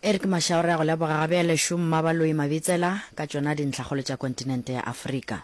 Eric Mashau re a go leboga ga bjale šo Mmabaloi Mabitsela ka tšona dintlhakgolo tša kontinente ya Afrika.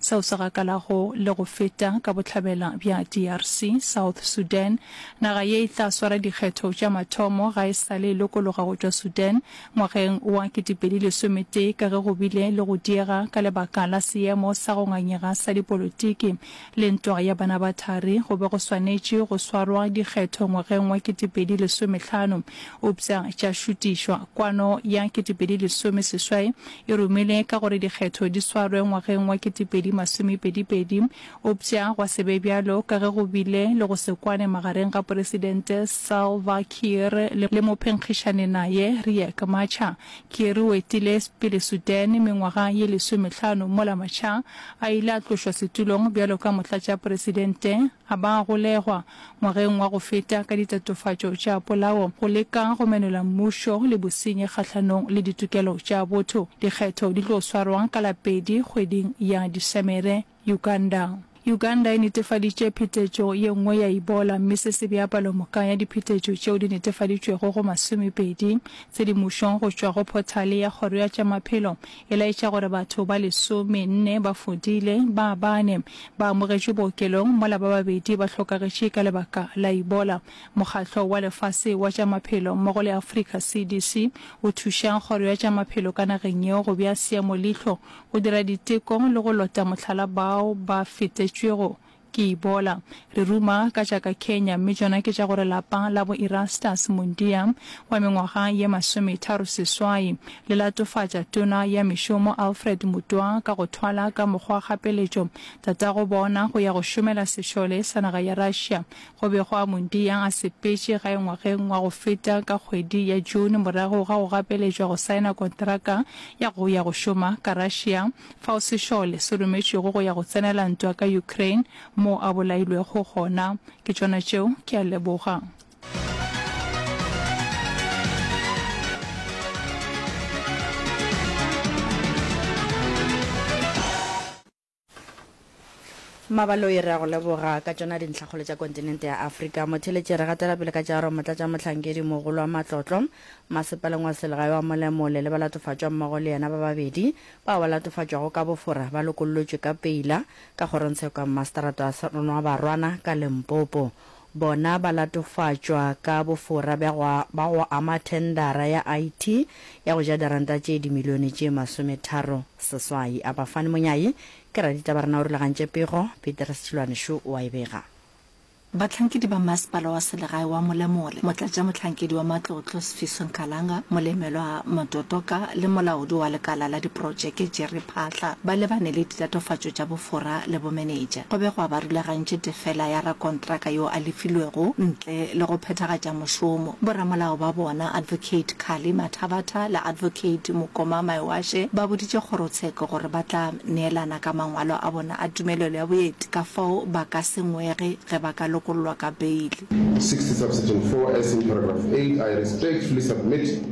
seo se gakalago le go feta ka bohlabela bja DRC, South Sudan. Naga ye e tla swara dikgetho tša mathomo ga e sa le e lokologa go tšwa Sudan ngwageng wa 2011 ka ge go bile le go diega ka lebaka la seemo sa go ngangega sa dipolotiki le ntwa ya bana ba thari. Go be go swanetše go swarwa dikgetho ngwageng wa 2015 eupša tša šutišwa. Kwano ya 2010 seswai e romile ka gore dikgetho di swarwe ngwageng wa ketepedi masomepedipedi, eupša gwa se be bjalo ka ge go bile le go se kwane magareng ga Poresidente Salva Kiir le mophenkgišani naye Riek Machar. Kiir o etile pele Sudan mengwaga ye lesomehlano mola Machar a ile a tlošwa setulong bjalo ka motlatšaporesidente. A ba golegwa, ngwageng wa go feta, ka ditatofatšo tša polao, go leka go menola mmušo le bosenyi kgahlanong le ditokelo tša botho. Dikgetho di tlo swarwa ka la pedi kgweding ya Disemere. Uganda. Uganda e netefaditše phetetšo ye nngwe ya Ebola mme se se bea palomoka ya diphetetšo tšeo di netefaditšwego go masomepedi tse di mušong go tšwa go phothale ya kgoro ya tša maphelo e laetša gore batho ba lesome nne ba fodile, ba bane ba amogetšwe bookelong mola ba babedi ba hlokagetše ka lebaka la Ebola. Mokgatlo wa Lefase wa tša Maphelo mmogo le Africa CDC o thuša kgoro ya tša maphelo ka nageng yeo go bea seemo leihlo, go dira diteko le go lota mohlala bao ba fetetšwego Ke ibola. Re ruma ka tša ka Kenya mme tšona ke tša gore lapa la bo Erastus Mundia wa mengwaga ye masometharo seswai le latofatša Tona ya Mešomo Alfred Mutwa ka go thwala ka mokgwa kgapeletšo tatago bona go ya go šomela sešole sa naga ya Russia go bego a Mundia a sepetše gae ngwageng wa go feta ka kgwedi ya June morago ga go gapeletšwa go saena kontraka ya go ya go šoma ka Russia fao sešole se rometšwego go ya go tsenela ntwa ka Ukraine moo a bolailwego gona. Ke tšona tšeo. Ke a leboga. Mmabaloi, Re a go leboga ka tšona dintlhakgolo tša kontinente ya Afrika. Motheeletši, Re gatela pele ka tšearo Motlatšamohlankedi mogolo wa matlotlo masepaleng wa selegae wa Molemole le balatofatšwa mmogo le yena ba babedi bao ba latofatšwago ka bofora ba lokollotšwe ka peila ka kgorongtsheko ya mmaseterata wa Seronoabarwana ka Limpopo. Bona ba latofatšwa ka bofora bja go ba go ama thendara ya IT ya go ja diranta tše dimilione tše masometharo seswai. Abafani Monyayi, Ke raditaba rena o rulagantše pego, Peter Setšilwane šo o a e bega. Bahlankedi ba Masepala wa Selegae wa Molemore, Motlatšamohlankedi wa Matlotlo Sfiso Nkalanga, Molemelwa Mototoka le Molaodi wa Lekala la Diprotšeke Jerry Phaahla ba lebane le ditatofatšo tša bofora le bomenetša. Go be gwa ba rulagantše tefela ya rakontraka yo a lefilwego le go phethagatša mošomo. Boramolao ba bona, Advocate Carly Mathabatha le Advocate Mokoma Maewashe, ba boditše kgorotsheko gore ba tla neelana ka mangwalo a bona a tumelelo ya boeti ka fao ba ka se ngwege ge ba ka lokollwa ka beili. 60 subsection four, as in paragraph eight, I respectfully submit.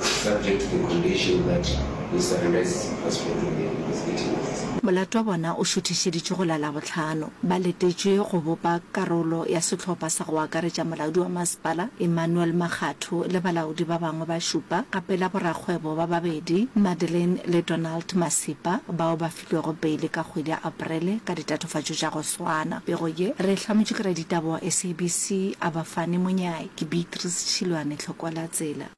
subject to the condition that Mister Rivest has spoken there because it is. Molato wa bona o šuthišeditšwe go la Labohlano. Ba letetšwe go bopa karolo ya sehlopha sa go akaretša molaodi wa masepala Emmanuel Makgatho le balaodi ba bangwe ba šupa, gape la borakgwebo ba babedi Madeleine le Donald Masipa, bao ba filwego beile ka kgwedi ya Aparele ka ditatofatšo tša go swana. Pego ye re e hlametšwe ke raditaba wa SABC Abafane Monyai. Ke Beatrice Tšhilwane Tlhokoelatsela.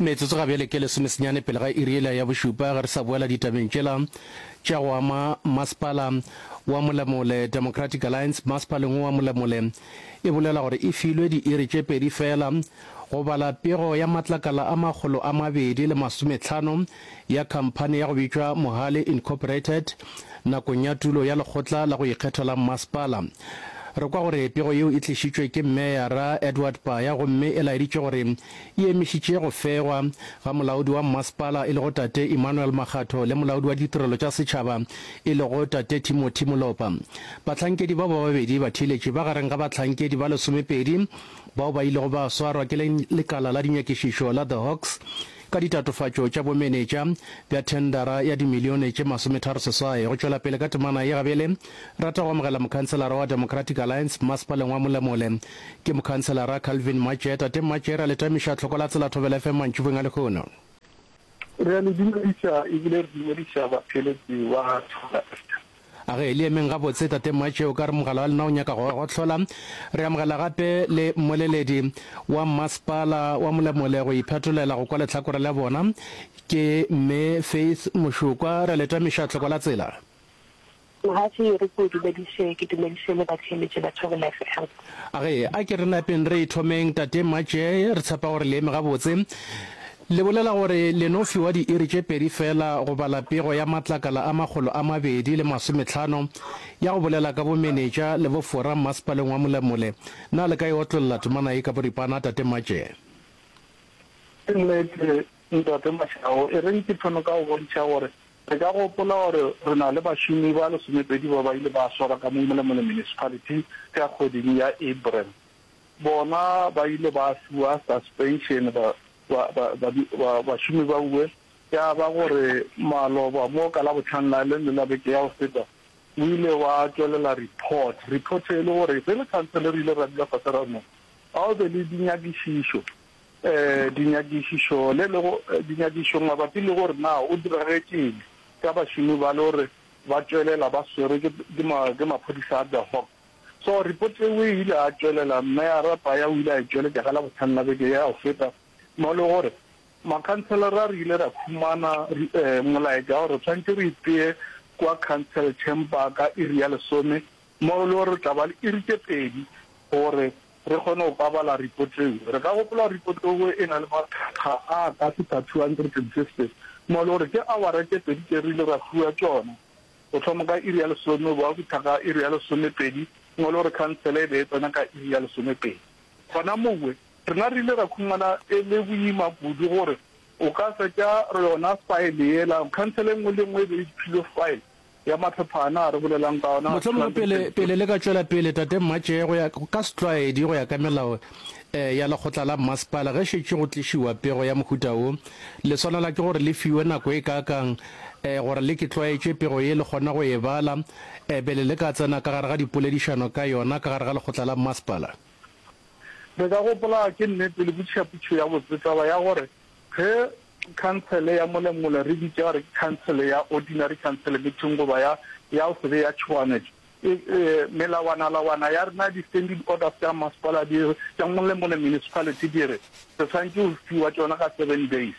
Metsotso ga bjale ke lesomesenyane pele ga iri yela ya bošupa ge re sa boela ditabeng tšela tša go ama masepala wa Molemole. Democratic Alliance masepaleng wo wa Molemole e bolela gore e filwe diiri tše pedi fela go bala pego ya matlakala a makgolo a mabedi le masometlhano ya khamphani ya go bitšwa Mohale Incorporated nakong ya tulo ya lekgotla la go ikgetha la mmasepala. Re kwa gore pego yeo e tlišitšwe ke meyara Edward Paya gomme e laeditše gore e emišitše go fegwa ga molaodi wa mmasepala e lego Tate Emmanuel Makgatho le molaodi wa ditirelo tša setšhaba e lego Tate Timothy Molopa. Bahlankedi bao ba babedi ba theeletše ba gareng ga bahlankedi ba lesomepedi bao ba ilego ba swarwa ke lekala la dinyakišišo la The Hawks ka ditatofatšo tša bomenetša bja thendara ya dimilione tše masometharo seswai go tšwela pele ka temana ye. Gabele rata go amogela mokhanselara wa Democratic Alliance mmasepaleng wa Molemole Ke Mokhanselara Calvin Matšhe. Tate Matšhe, re a le tamiša tlhoko la Tsela Thobela FM mantšibong a lehono. Re a le dumediša ebile re dumediša batheeletši ba Thobela FM. A ge le emeng gabotse, Tate Matšhe, o ka re mogala wa lena o nyaka go gohlola? Re amogela gape le mmoleledi wa Mmasepala wa Molemole go iphetolela go kwa lehlakore la bona. Ke Mme Faith Mošukwa. Re a le tamiša tlhoko la Tsela. Mohafi yo re ke o dumediše, ke dumediše le batheeletši ba Thobela FM. A re, A ke re lapeng re e thomeng, Tate Maje, re tshepa gore le eme gabotse. Le bolela gore le no fiwa diiri tše pedi feela go bala pego ya matlakala a makgolo a mabedi le masometlhano ya go bolela ka bomenetša le bofora mmasepaleng wa Molemole. Na le ka e otlolla temana ye ka boripana, Tate Maje? Ke nnete, Ntate Mashau, e reng ke thome ka go bontšha gore re ka gopola gore re na le bašomi ba lesomepedi ba ba ile ba swarwa ka mo Malamulele Municipality ka kgweding ya April. Bona ba ile ba fiwa suspension ba ba bašomi ba uwe ya ba gore maloba mo ka Labohlano la le le la beke ya go feta o ile wa tšwelela report. Report e le gore ge le khansele re ile ra dula fase ra no ga o be le dinyakišišo. Dinyakišišo le le go dinyakišišo mabapi le gore na o diragetšeng ka bašomi ba le gore ba tšwelela ba swerwe ke ke maphodisa a De Hoop. So report eo e ile ya tšwelela Meyara Paya o ile a e tšweletša ka Labohlano la beke ya go feta mo le gore makhanselara re ile ra khumana molaetša gore re tshwanetse re itee kwa council chamber ka iri ya lesome mo le gore re tla ba le iri tše pedi gore Re kgone go pabala ripoteo. Re ka gopola ripoteo e na le makgakga a ka feta 250 mo e le gore ke awara tše pedi tše re ile ra fiwa tšona, go thoma ka iri ya lesome go ba fihla ka iri ya lesomepedi mo e le gore khansele e be e tsena ka iri ya lesomepedi. Gona mowe, rena re ile ra khumana e le boima kudu gore o ka fetša yona faele yela. Khansele e nngwe le e nngwe e be e philwe faele Ya mahlophana a re bolelang ka ona. Mohlomongwe pele, pele le ka tšwela pele, Tate Mmatšee, go ya ka setlwaedi, go ya ka melao eh, ya lekgotla la mmasepala, ge šetše go tlišiwa pego ya mohuta wo, le swanela ke gore le fiwe nako e kaakang eh, gore le ke tlwaetše pego ye, le kgone go e bala eh, pele le ka tsena ka gare ga dipoledišano ka yona ka gare ga lekgotla la mmasepala? Re ka gopola, ke nnete, le botšhaputšho ya botse taba ya gore ge Khansele ya Molengole re bitša gore ke khansele ya ordinary khansele meeting goba ya ya o sebe ya tšhoganetšo. E, e, melawanalawana ya rena, di-standing orders tša masepala di re, tša Molengole Municipality di re, re swanetše go fiwa tšona ka seven days.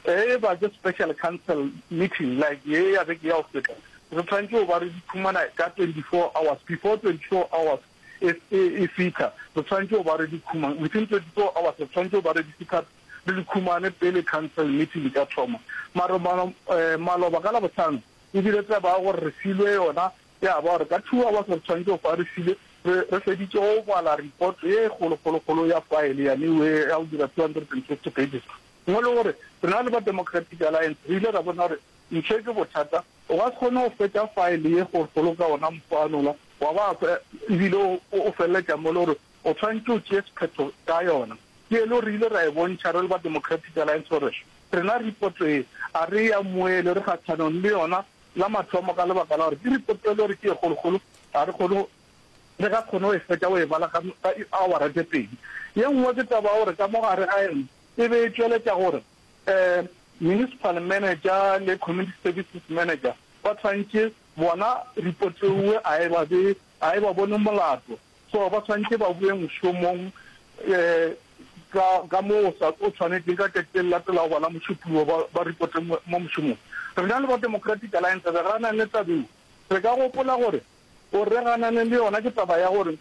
E ba ke special council meeting like ye ya beke ya go feta, re swanetše go ba re di phumana ka 24 hours, before 24 hours e, e, e fitha re swanetše go ba re di khumang, within 24 hours re swanetše go ba re di fitha re di khumane pele council meeting e ka thoma. Maro mano, eh, maloba ka Labohlano e bile taba ya gore re filwe yona ya ba gore ka two hours re tshwanetse go fa re file, re, re feditše go bala report ye kgolokgolokgolo ya file ya new ye ya go dira 250 pages. Mo le gore rena le ba Democratic Alliance re ile ra bona gore ntho ke bothata, o ka se kgone go fetša file ye kgolokgolo ka ona mokgwa wa nola wa ba fe, e bile o, o feleletša mo le gore O tshwanetše o tšee sephetho ka yona. Ke yela o re ile ra e bontšha re le ba Democratic Alliance gore rena ripoto ye a re e amoele, re kgathanong le yona la mathomo ka lebaka la gore ke ripoto e le gore ke e kgolokgolo, ga re kgone re ka kgone go e fetša go e bala ka ka di-hour-a tše pedi. Ye nngwe ke taba ya gore ka mo gare ga yona e be e tšweletša gore um municipal manager le community services manager ba tshwanetše bona ripoto ewe a e ba be a e ba bone molato. So ba swantše ba boe mošomong ka ka mo o sa o tshwanetšeng ka tšatši le le latelago bana mošupuo ba ba ripote mo mo mošomong. Rena le ba Democratic Alliance re ganane le taba eo. Re ka gopola gore o re ganane le yona ke taba ya gore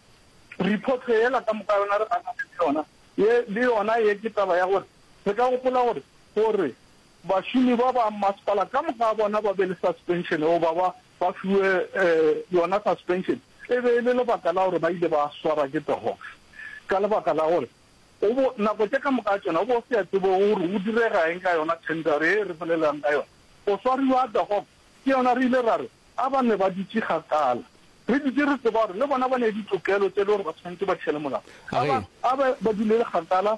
report yela ka moka yona re ganane le yona ye le yona ye ke taba ya gore re ka gopola gore gore bašomi ba ba masepala ka moka bona ba be le suspension goba ba ba fiwe yona suspension e be e le lebaka la gore ba ile ba swarwa ke tohof ka lebaka la gore o bo nako tše ka moka tšona o bo se ya tsebo gore o direga eng ka yona tender e re bolelelang ka yona o swariwa tohof ke yona re ile ra re a ba ne ba dutše kgakala re dutše re tseba gore le bona ba ne ditokelo tše le gore ba tshwanetse ba tšhele molao a ba a ba ba dulele kgakala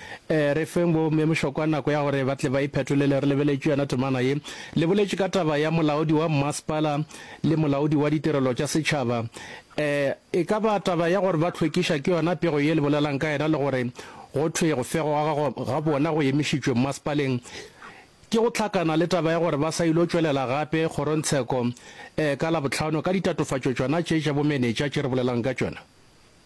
Ee, re feng bomme mošokwa nako ya gore ba tle ba iphetolele. Re lebeletše yona temana ye. Le boletše ka taba ya molaodi wa mmasepala le molaodi wa ditirelo tša setšhaba. Ee, e ka ba taba ya gore ba hlwekiša ke yona pego ye le bolelang ka yena le gore go thwe go fegwa ga ga bona go emišitšwe mmasepaleng ke go hlakana le taba ya gore ba sa ilo tšwelela gape kgorontsheko ee, ka Labohlano ka ditatofatšo tšona tše tša bomenetša tše re bolelang ka tšona.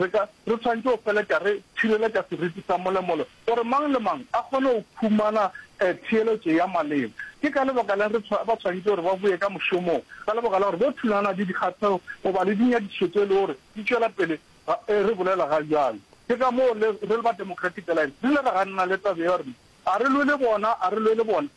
Re ka, re swanetše go feletša re tšhireletša seriti sa molemole gore mang le mang a kgone go khumana theeletšo ya maleba. Ke ka lebaka la'ng re ba swanetše gore ba boye ka mošomong? Ka lebaka la gore bo thulana le dikgathego goba le dinyadišo tše e le gore di tšwela pele ga, ee, re bolela ga bjalo. Ke ka moo le, re le ba Democratic Alliance re ile ra ganana le taba eo, ra re, A re lwe le bona, a re lwe le bona.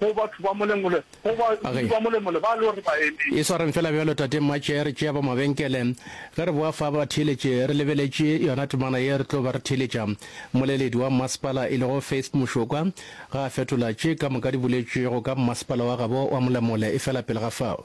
Go batho ba Molemole, go ba dudi ba Molemole ba lo re ba eme. E swareng fela bjalo Tate Mmatšhe, re tšea ba mabenkele. Ge re boa fa ba theeletše, re lebeletše yona temana ye re tlo ba re theeletša. Mmoleledi wa mmasepala e lego Faith Mošokwa ga a fetola tše ka moka di boletšwego ka mmasepala wa gabo wa Molemole efela pele ga fao.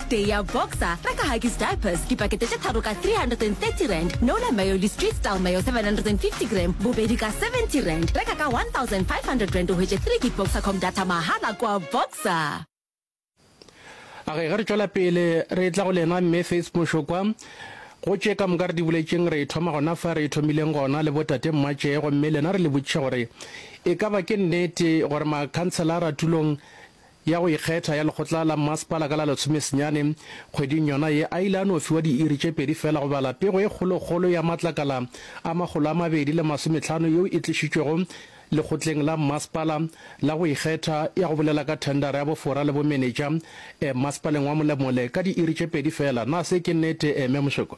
Tee ya Boxer, reka Huggies Diapers, dipakete tše tharo ka R330, Nola Mayo le Street Style Mayo 750 gram, bobedi ka R70, reka ka R1,500 o hwetše 3 gig Boxercom data mahala kua Boxer. A ge ge re tšwela pele re tla go lena Mme Faith Mošokwa. Gotše ka moka re di buletšeng re thoma gona fa re thomileng gona le botate Mmatšee gomme lena re le botšiše gore e ka ba ke nnete gore makhanselara tulong ya go ikgetha ya lekgotla la mmasepala ka la lesome senyane kgweding yona ye, a ile a no fiwa diiri tše pedi fela go bala pego e kgolokgolo ya matlakala a makgolo a mabedi le masometlhano yeo e tlišitšwego lekgotleng la mmasepala la go ikgetha ya go bolela ka thendara ya bofora le bomenetša eh, mmasepaleng wa Molemole ka diiri tše pedi fela. Na se ke nnete eh, Mme Mošekwa?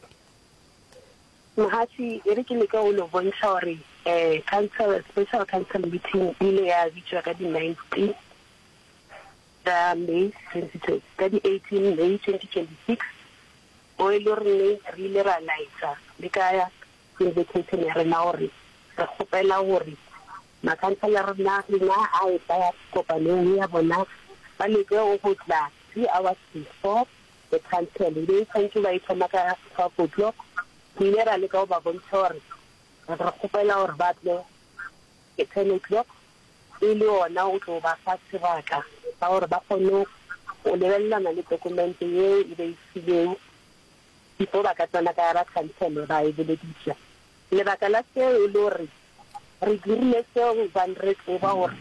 Mogatši, e re ke leke go no bontšha gore eh, council, special council meeting e ile ya bitšwa ka di ninety. ka May 2020, ka di 18 May 2026, mo e lego gore re ile ra laetša le ka invitation ya rena gore re kgopela gore makhansele a rena a etla kopanong ya bona ba leke go tla three hours before the council e be e swantše ba e thoma ka twelve o'clock. Re ile ra leka go ba bontšha gore re kgopela gore ba tle at ten o'clock. e le ona o tlo ba fa sebaka sa gore ba kgone go lebelelana le tokumente yeo e ba e filwego before ba ka tsena ka ba khansele ba e bolediša. Lebaka la seo e le gore re dirile seo gobane re tseba gore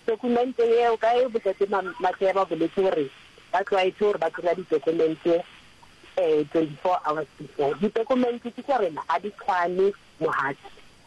tokumente yeo ka ge Botate Matlea ba boletše gore ba tlwaetše gore ba kry-a ditokumente um twenty-four hours before. Ditokumente ke tša rena ga di tshwane, mogatša.